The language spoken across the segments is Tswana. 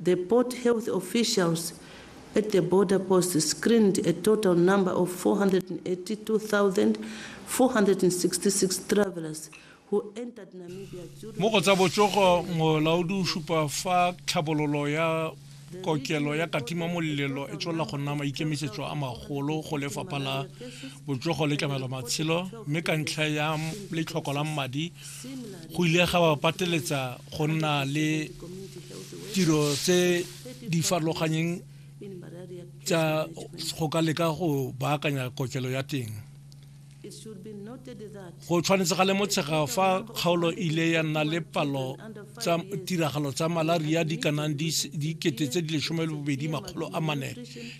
The Port Health officials at the border post screened a total number of 482,466 travelers Mo go tsa botsogo molaodi o supa fa tlhabololo ya kokelo ya katima molelo e tswelela go nna maikemisetso a magolo go lefapha la botsogo le tlamelo matshelo mme ka ntlha ya letlhoko la madi go ile ga ba pateletsa go nna le tiro tse di farologanyeng tsa go ka leka go baakanya kokelo ya teng go tshwanetse ga lemotshega fa kgaolo e ile ya nna le palo tsa tiragalo tsa malaria di ka nang dikete tse di lesome le bobedi makgolo a mane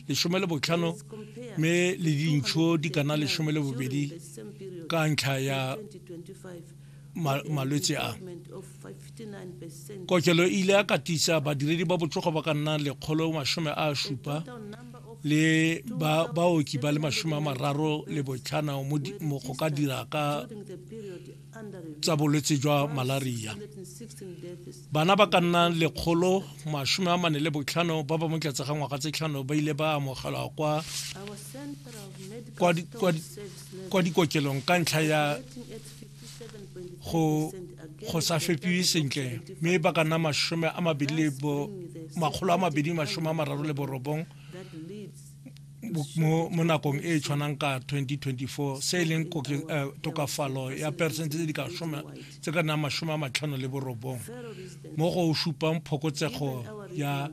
lesome le botlhano mme le dintšho di ka nna lesome le bobedi ka ntlha ya malwetse a kokelo e ile ya katisa badiredi ba botsogo ba ka nnang lekgolo masome a supa le ba baoki ba le masome a mararo le botlhano mo go ka dira ka tsa bolwetse jwa malaria Bana ba ka nna lekgolo masome a mane le botlhano ba ba mo tletse ga ngwaga tse tlhano ba ile ba amogelwa kwa kwa dikokelong ka ntlha ya go go sa fepiwe sentle mme ba ka nna masome a mabedi le makgolo a mabedi masome a mararo le borobong mo mo nakong e tshwanang ka 2024 se e leng eh, tokafalo ya peresente tse di ka shome tse ka nang mashome a matlhano le borobong mo go supang phokotsego ya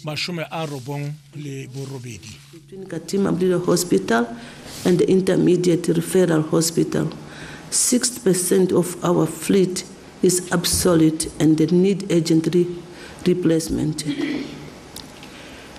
mashome a robong le borobedi between Katima Blilo Hospital and the Intermediate Referral Hospital 60% of our fleet is obsolete and they need urgently replacement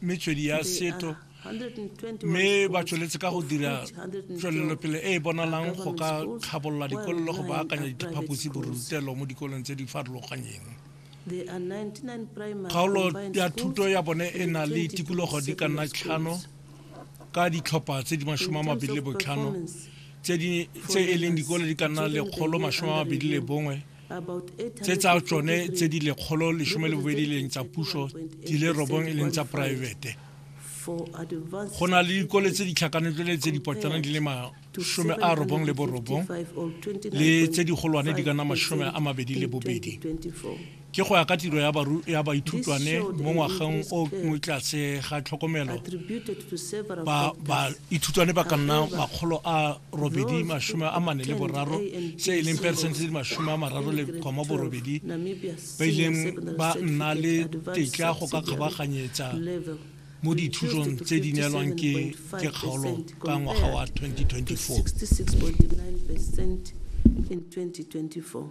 metswedi ya seto mme ba tsweletse ka go dira tswelelopele e e bonalang go ka tlhabolola dikolo le go baakanya dithaphaposi borutelo mo dikolong tse di farologanyeng kgaolo ya thuto ya bone e na le tikologo di ka nna tlhano ka ditlhopha tse di masome a mabedi le botlhano tse e leng dikolo di ka nna lekgolo masome a mabedi le bongwe tse tsa tsone tse di lekgolo lesome le bobedi leng tsa puso di le robong e leng tsa poraefete go na le dikole tse di tlhakanetswe le tse dipotlana di le masome a robong le borobong le tse digolwane di ka nna masome a mabedi le bobedi ke go ya ka tiro ya baithutwane mo ngwageng o mo tlase ga tlhokomelo baithutwane ba ka nna makgolo a robedi masome a mane le boraro se e leng peresente masome a mararo le koma borobedi ba ileng ba nna le tetla go ka kgabaganyetsa mo dithutong tse di neelwang ke ke kgaolo ka ngwaga wa 2024